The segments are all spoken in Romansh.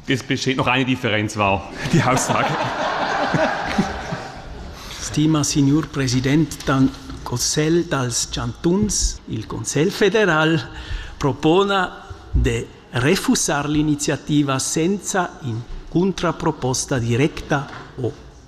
Das besteht noch eine Differenz, wow, die Aussage. Stima signor President, dann Consiglio dels Chantuns, il Consiglio federal propona di refusare l'iniziativa senza in contraproposta directa o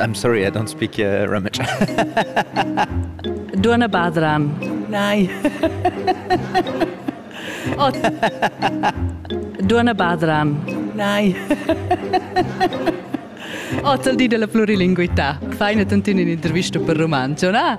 I'm sorry, I don't speak uh, Rummage. Duana Badran. Nei. oh. Duana Badran. Nei. Oz al di della plurilinguità. Fai una tantina un'intervista per romanzo, na?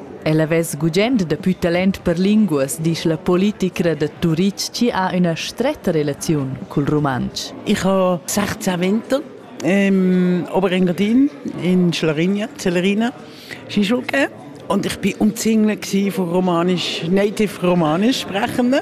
Ella vess gugent dapü talent per linguas, disch la politicra da Turitg chi ha üna stretta relaziun cul rumantsch. Ich habe 16 Winter ähm, Oberengadin in Schlarigna, Celerina, Skischulke. Und ich war umzingelt von romanisch, native romanisch sprechenden.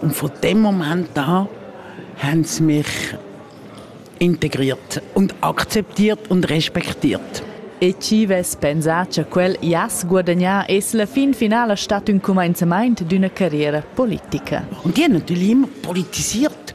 Und von dem Moment an haben sie mich integriert und akzeptiert und respektiert. E ci vess pensà cha quel jass guadagnà es la fin finala stat ün cumainzamaint d'üna carriera politica. Und die haben natürlich immer politisiert.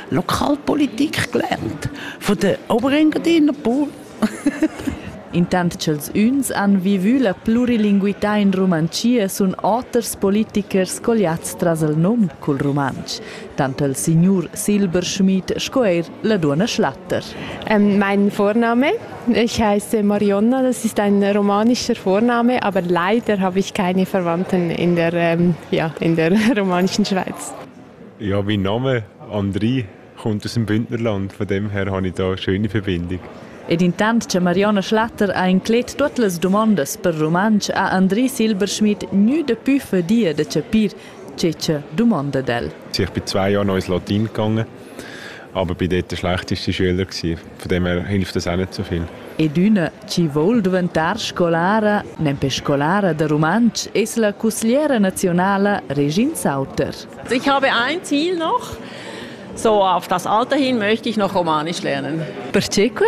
Lokalpolitik gelernt von der Oberengadiner Pool. Intant ch'els üns han vivü la plurilinguità in Rumantschia sun oters politichers colliats tras il nom cul rumantsch, tant il signur Silberschmidt sco eir la duonna Schlatter. Mein Vorname, ich heiße Marionna, das ist ein romanischer Vorname, aber leider habe ich keine Verwandten in der, ja, in der romanischen Schweiz. Ja, mein Name Andri kommt aus dem Bündnerland, von dem her habe ich da eine schöne Verbindung. Ed intant che Marionna Schlatter ha inclet tuot las dumondas per rumantsch ha Andri Silberschmidt gnü dapü fadia da chapir che cha dumonda d'el. Ich bin zwei Jahre noch ins Latin gegangen, aber bin dort der schlechteste Schüler. Gewesen. Von dem her hilft das auch nicht so viel. Ed üna chi voul duventar scolara, nempe scolara da rumantsch, es la cusgliera naziunala Regine Sauter. Ich habe ein Ziel noch. So auf das Alter hin möchte ich noch Romanisch lernen. Perceque?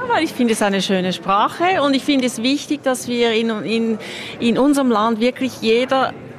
weil ich finde es eine schöne Sprache und ich finde es wichtig, dass wir in, in, in unserem Land wirklich jeder